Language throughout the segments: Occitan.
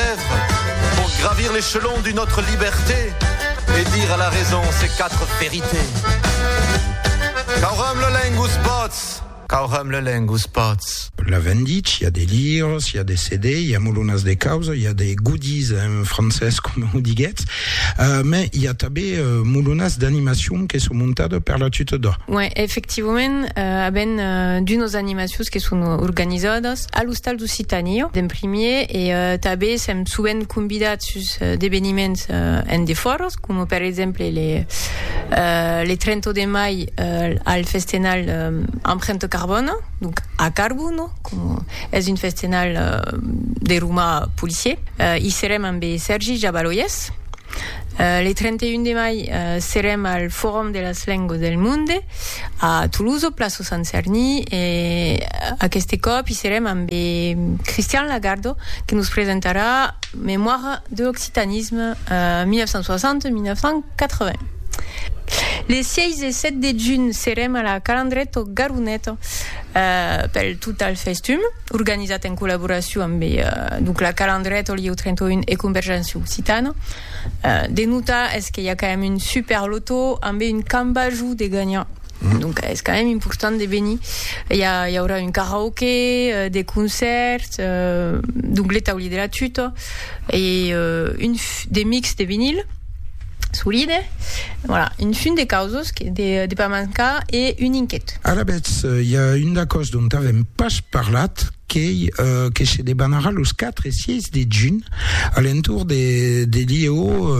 rêve Pour gravir l'échelon d'une autre liberté Et dire à la raison ces quatre vérités Qu'aurum le lengus pots Qu'aurum le lengus pots La vendit, i a de lires, i a de CD, i a molonas de causa, i a de goodies en francés coma o diguetz, uh, me i a tabé uh, molonas d'animacion que son montada per la tuta d'o. Uèi, efectivament, uh, aben uh, d'unos animacions que son organizadas a l'ostal Occitània d'en primièr e tanben sèm sovent convidats sus d'eveniments en defòra, coma per exemple le 30 de mai al festenal Emprunte Carbone, donc a Carbono, coma es un festenal de romà policier. I serem ambe Sèrgi Jabaloyes. Le 31 de mai serem al Forum de las Lenguas del Monde. A Tolosa, plaça Sant Cerni, e aqueste còp i serem ambe Cristian Lagardo que nos presentarà Mémoire de l'occitanisme 1960-1980. Les 6 e 7 de junh serem a la Calandreta o Garonet pel Total Festum, organizat en collaboracion ambe donc la Calandreta, Lieu 31 e Convergéncia Occitana. De notar es que i a quand mème un super loto ambe un cambajou de gagnant. Donc es quand mème important de venir. I a i aurà un karaoke, de concert, donc le tauli de la tuta e un de mix de vinil solide. Voilà, un fum de causos que de de pas mancar e un inquet. Alavetz, i a un d'aquò's dont avèm pas parlat. qu'ei que se debanarà los 4 e 6 de junh a l'entorn de Lièu,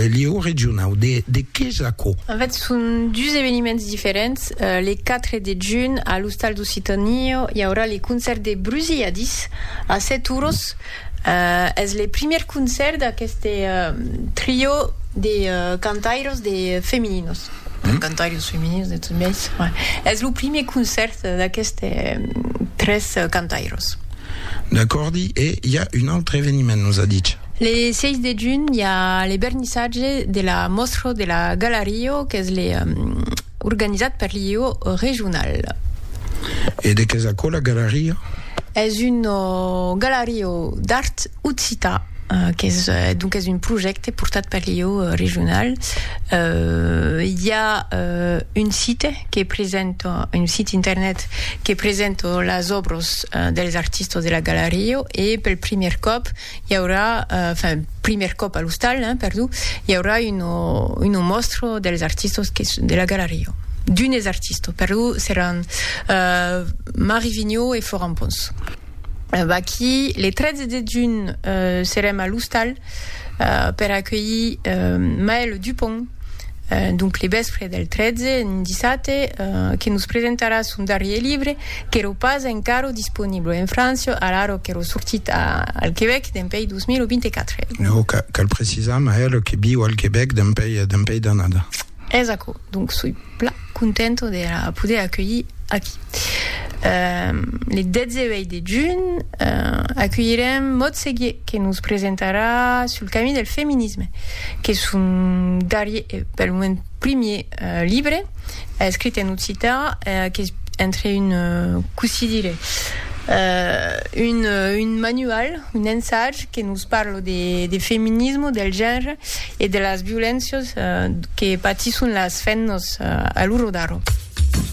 Lièu regionau. De qué es aquò? En fait, son dus eveniments diferents. Le 4 de junh, a l'Ostal d'Occitània, i aurà le concèrt de Brusilladis a 7 oros. Es le primièr concèrt d'aqueste trio de cantairos de femininos, cantairos femininos de tot biais, es lo primièr concèrt d'aqueste tres cantairos. D'acòrdi, e i a un autre eveniment, nos a dich? Le 6 de junh i a le vernissatge de la mòstra de la Galario, qu'es le Organizat per l'IEO regional. E de qu'es aquola galaria? Es una galaria d'art occita, qu'es donc es un projècte portat per l'IEO regional. I a un site que presenta, un site internet que presenta las òbras dels artistas de la galaria e pel primièr còp I aurà, enfin, primièr còp a l'ostal, hein, perdó, i aurà uno, uno mòstro dels artistos que, de la galeria, d'unes artistos, perdó, seràn uh, Marie Vigneau e Florent Pons. Vaquí, le 13 de junh serem a l'ostal uh, per acuelhir uh, Maëlle Dupont, uh, donc le vèspre del 13, un dissate, uh, que nos presentarà son darrier libre, Qu'èro pas encara disponible en França a l'ara qu'èro sortit al Quebec dempèi 2024. Nau, cal precisar, mas ère que viu al Quebec dempèi d'annada. Es aquò, donc soi pla contenta de la poder aculhir aquí. Le 18 de junh aculhirem Maud Seguier que nos presentarà Sul camí del feminisme, qu'es son darrier e pel moment, Primier libre escrit en occitan qu'es entre un, com se dire, un, un manual, un ensaj que nos parla de, de feminisme, del genre e de las violéncias que patisson las femnas a l'ora d'ara.